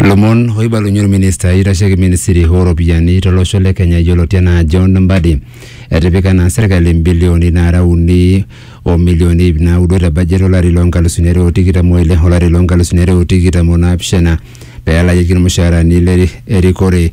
Lomon oibalunye orminista oitasheki ministry ooropiyiani tolosho le Kenya yioloti anaa John Mbadi etipika naa serkali mbilioni naara uni o milioni ip naudo te budget olari loo nkalusuni are o tikitam oile olari loo nkalusuni are o tikitam o naapishana pee elakieki irmushaarani le erikore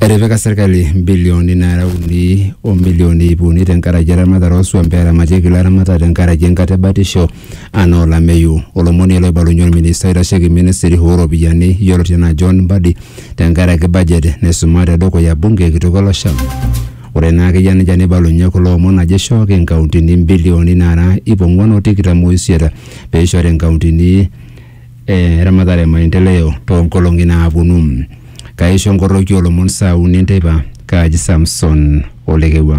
etipika serkali mbilioni nara uni o milioni iip uni tenkaraki eramatare osuam peramatieki ilaramatak tenkaraki enkata ebatisho anaa olameyu olomoni ele oibalunye olminista oitasheki ministry ooropiyiani yioloti anaa John Mbadi tenkaraki budget naisuma tedukuya bunge kitok olosho Ore naa ake eyia nejia neibalunye kulo omon ajo eishooki inkauntini imbilioni naara iip ong'uan o tikitam o isiet pee eishori inkauntini e ramatare e maendeleo too nkolong'i naaponu. Kaaisho nkoroki oo lomon saa uni enteipa, kaaji Samson o Lekewua.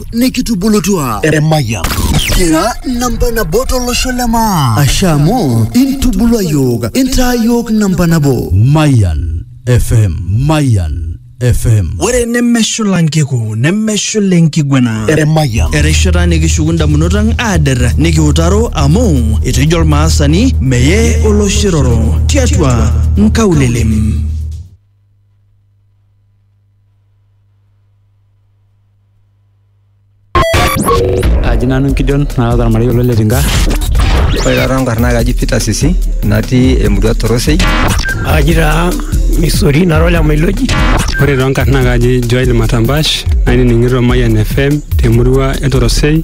nikitubulutua emayian kira namba nabo tolosho le maa asha amu intubulua yiok intaa yiok namba nabo Mayan FM. Mayan FM. ore nemeshula nkiku nemeshula enkiguana emayian erishata nikishuku ndamunot ang aader nikiutaro amu etejo olmaasani meye oloshiroro tiatua nkaulelem Aji nanu Gideon naata ormarei olo Letinka. Ore taata nkarn naa kaji Peter Sisi natii emurua Torosei. Aji taa Misori nara ole Mailoji. Ore too nkarn naa kaji Joel Matambash nainining'ito Mayian FM temurua e Torosei.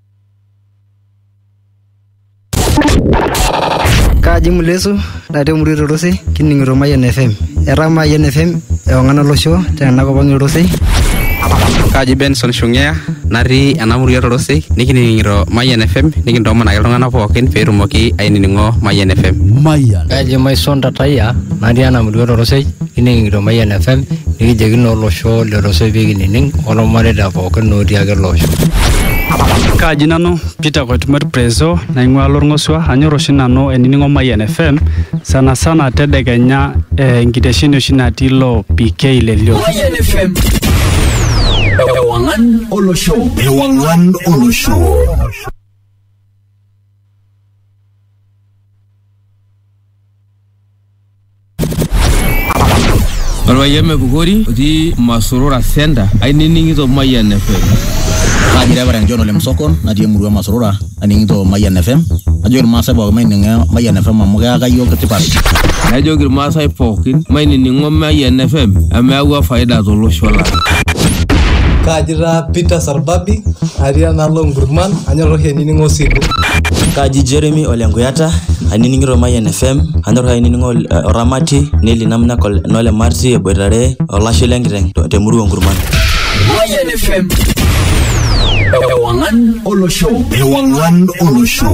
Kaaji Mulesu natii emurua e Torosei kining'ito Mayian FM. Etaa Mayian FM ewang'an olosho tena kop ang' e Torosei. Kaaji Benson Shung'ea natii ena murua e Torosei nikining'ito Mayian FM nikintoomon ake iltung'anak pookin pee etumoki ainining'o Mayian FM. Mayian. Kaaji Maison Tatayia natii ena murua e Torosei. Kining'ito Mayian FM nikijoki naa olosho letosoy pee kinining olmareita pookin otii ake ele osho. Kaaji nanu Peter Koitumot Prezo naing'ua Lorng'osua anyor oshi nanu ainining'o Mayian FM sana sana tedekenya eh, enkitesheni oshi natii ilo PK le Lio. Mayian FM. Ewang'an olosho. Ewang'an olosho. Orpayian Mepukori otii Masurura Center ainining'ito Mayian FM. Kaji Reverend John Ole Msokon natii emurua e Masurura aning'ito Mayian FM. Ajoki Irmaasai pooki maining'o Mayian FM amu keyaka iyiook tipat. Najoki Irmaasai pookin mainining'o Mayian FM amu eyawua faida tolosho lang'. Kaji taa Peter orbabi atii enaalo nkurman anyor oshi ainining'o osilu Kaji Jeremy ole Nkuyata, ainining'ito Mayian FM, anyor ainining'o eh, Oramati, Neli Namnak ole- nole Marti eboitare olashe lenkiteng to- temurua Nkurman. Mayan FM. Ewangan Olosho. Ewangan Olosho.